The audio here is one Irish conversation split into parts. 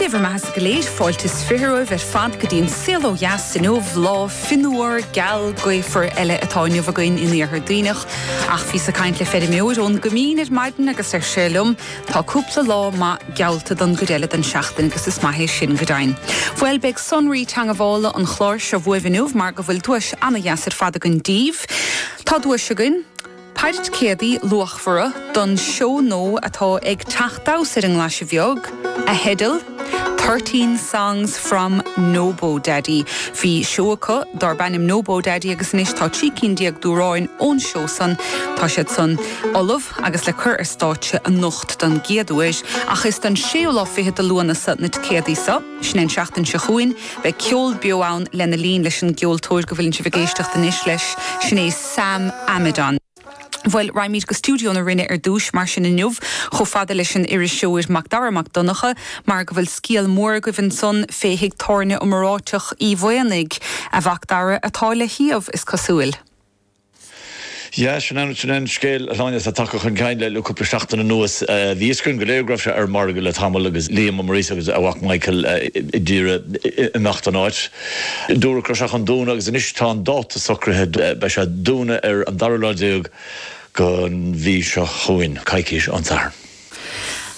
Dé bhur mbeathasa go léir, fáilte is fiche romhaibh ar fad go dtí an Saol Ó Dheas inniu, lá fionnuar, geal, gaofar eile atá inniu againn in Iarthar Duibhneach. Ach bhíos ag caint le feirmeoir ón gCoimín ar maidin agus ar sé liom, tá cúpla lá maith geallta don gcuid eile den seachtain agus is maith é sin go deimhin. Bhuel, beidh sonraí teangabhála an chláir seo bhuaibh inniu mar go bhfuil duais ana-dheas ar fad againn daoibh. Tá duais againn. Péire ticéadaí luachmhara don seó nó atá ag teacht suas ar an nGlaise Bheag, a theideal, Thirteen Songs from Nobodaddy. Bhí seó acu darb ainm Nobodaddy agus anois tá trí cinn déag d'amhráin ón seó san, tá siad san ullamh agus le cur ar stáitse anocht don gcéad uair. Ach is don séú lá fichead de Lúnasa na ticéadaí so. Sin é an tseachtain seo chugainn. Beidh ceol beo ann lena linn leis an gceoltóir go bhfuileann sibh ag éisteacht anois leis, sin é Sam Amidon. Bhuel, raghaimid go stiúideo na Rinne ar dtús, mar sin, inniu, chomh fada leis an iriseoir Macdara Mac Donncha, mar go bhfuil scéal mór agaibh ansan fé thigh tábhairne iomráiteach Uí Mhaonaigh, a Mhacdara, atá le hiamh, is cosúil. Yeah, sin é, sin é an scéal a Shláine, atá tagtha chun cinn le cúpla seachtain anuas. Bhí a fhios againn go léir go raibh sé ar an margadh le tamall agus Liam Ó Muirgheasa agus a mhac Michael ag iarraidh imeacht ón áit. Dúradh go raibh sé chun dúnadh agus anois tá an dáta socraithe, beidh sé a' dúnadh ar an dara lá déag gon mhí seo chugainn, coicís ón Satharn.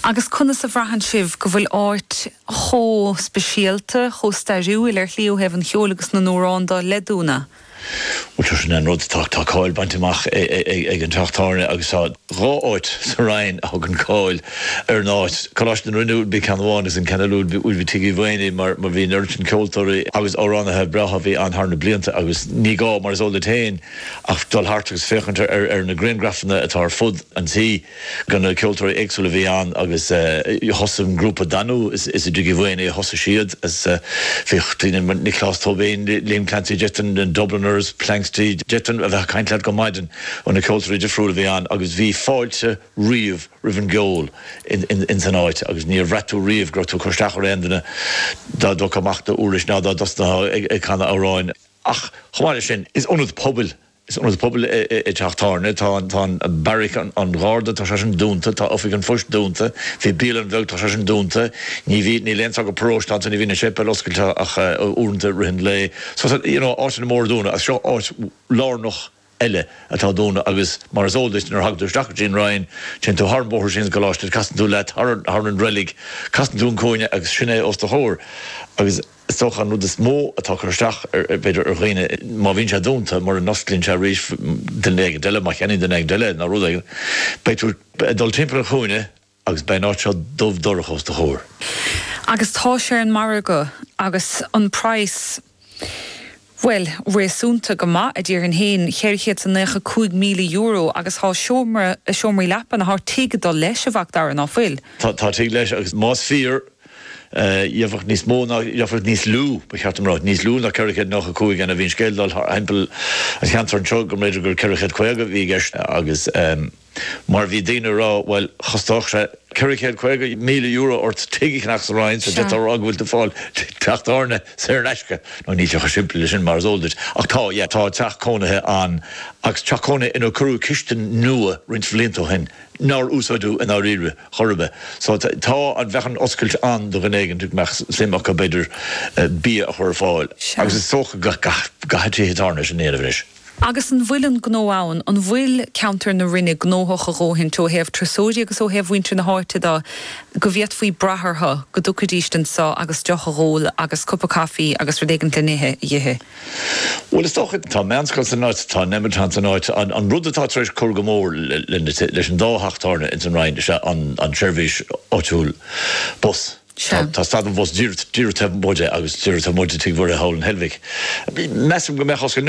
Agus conas a bhraitheann sibh go bhfuil áit chomh speisialta, chomh stairiúil go háirithe ó thaobh an cheoil agus na n-amhrán de le dúnadh? Sin é an rud, tá cáil bainte amach ag an teach tábhairne agus tá dhá áit sa Rinn a thugann cáil ar an áit, Coláiste na Rinne you know ceann amháin agus an ceann eile you know Tigh Uí Mhaonaigh mar bhí an oiread sin ceoltóirí agus amhránaithe breátha a bhí ann thar na blianta agus ní gá, mar is eol duit féin, ach dul thart agus féachaint ar na griangrafanna atá ar fud an tí. de na ceoltóirí éagsúla a bhí ann agus thosaigh an grúpa Danú, is i dTigh Uí Mhaonaigh a thosaigh siad, bhíodh daoine mar Nioclás Tóibín, Liam Clancy, d'fhéadfainn, na Dubliners, Planxty, d'fhéadfainn a bheith ag caint leat go maidin ó na ceoltóirí difriúla a bhí ann agus bhí fáilte riamh roimh an gceol ins an áit agus níor bhraith tú riamh go raibh tú ag cur isteach ar aon duine dá dtógfá amach d'úirlis ná dá dtosnaitheá ag canadh amhráin ach chomh maith leis sin is ionad pobail Is ionad pobail é Teach Tábhairne. Tá, tá Beairic an Gharda, tá sé sin dúnta, tá Oifig an Phoist dúnta, bhí bialann bheag, tá sé sin dúnta, ní bhí, níl aon sagart paróiste ann, ní bhíonn an séipéal oscailte ach uaireanta i rith an lae. So tá, you know, áiteanna móra dúnta ach seo áit lárnach eile atá dúnta agus mar is eol duit nuair a thagann tú isteach go dtí an Rinn, téann tú thar an bóthar síos go dtí an gcoláiste, casann tú leat thar an reilig, casann tú an cúinne agus sin é os do chomhair agus. Is dócha an rud is mó atá ag cur isteach b'fhéidir ar dhaoine, má bhíonn sé dúnta, mura n-osclaíonn sé arís duine éigin eile, má cheannaíonn duine éigin eile é nó rud éigin, beidh tú ag dul timpeall an chúinne agus beidh an áit seo dubh dorcha os do chomhair. Agus tá sé ar an margadh agus an praghas. Bhuel, réasúnta go maith, a déarfainn féin, cheithre chéad 's a naocha cúig míle euro, agus tá seomra, seomraí leapan, nó tá tigh ag dul leis, a Mhac Dara, ná fuil? Tá, tá tigh leis, agus más fíor, gheofadh níos mó ná, gheofadh níos lú, ba cheart dom a rá, níos lú ná ceithre chéad nócha cúig ann, a bhí an scéal ag dul thimpeall an cheantair anseo, go mb'fhéidir gur ceithre chéad caoga a bhí i gceist, agus. Mar bhí daoine a rá, bhuel, chosnódh sé ceithre chéad caoga míle euro ort tigh a cheannach sa Rinn so d'fhéadfá a rá go bhfuil tú ag fáil teach tábhairne saor in aisce. Now níl sé chomh simplí leis sin, mar is eol duit. Ach tá, yeah, tá teach cónaithe ann agus teach cónaithe inar cuireadh cistin nua roinnt bhlianta ó shin nár úsáideadh i ndáiríre chor ar bith. So tá an, bheadh an oscailt ann do dhuine éigin a mbeadh suim acu, b'fhéidir, bia a chur ar fáil. Agus is dócha go gcaithfidh tithe tábhairne sin a dhéanamh anois. Agus an bhfuil an gnó ann? An bhfuil ceantar na Rinne gnóthach a dhóthaint ó thaobh turasóirí agus ó thaobh mhuintir na háite de go bhféadfaí brath orthu go dtiocfaidíst anseo agus deoch a dh'ól agus cupa caifí agus rud éigint le n-ithe a dh'ithe? Bhuel, is dócha, tá meánscoil san áit, tá Nemeton san áit. An rud atá tar éis cur go mór leis an dá theach tábhairne ins an Rinn is ea an tseirbhís áitiúil bus. Tá stad an bhus díreach taobh amuigh de agus díreach taobh amuigh de Tigh Mhuirithe thall in Heilbhic. Measaim go mbeadh os cionn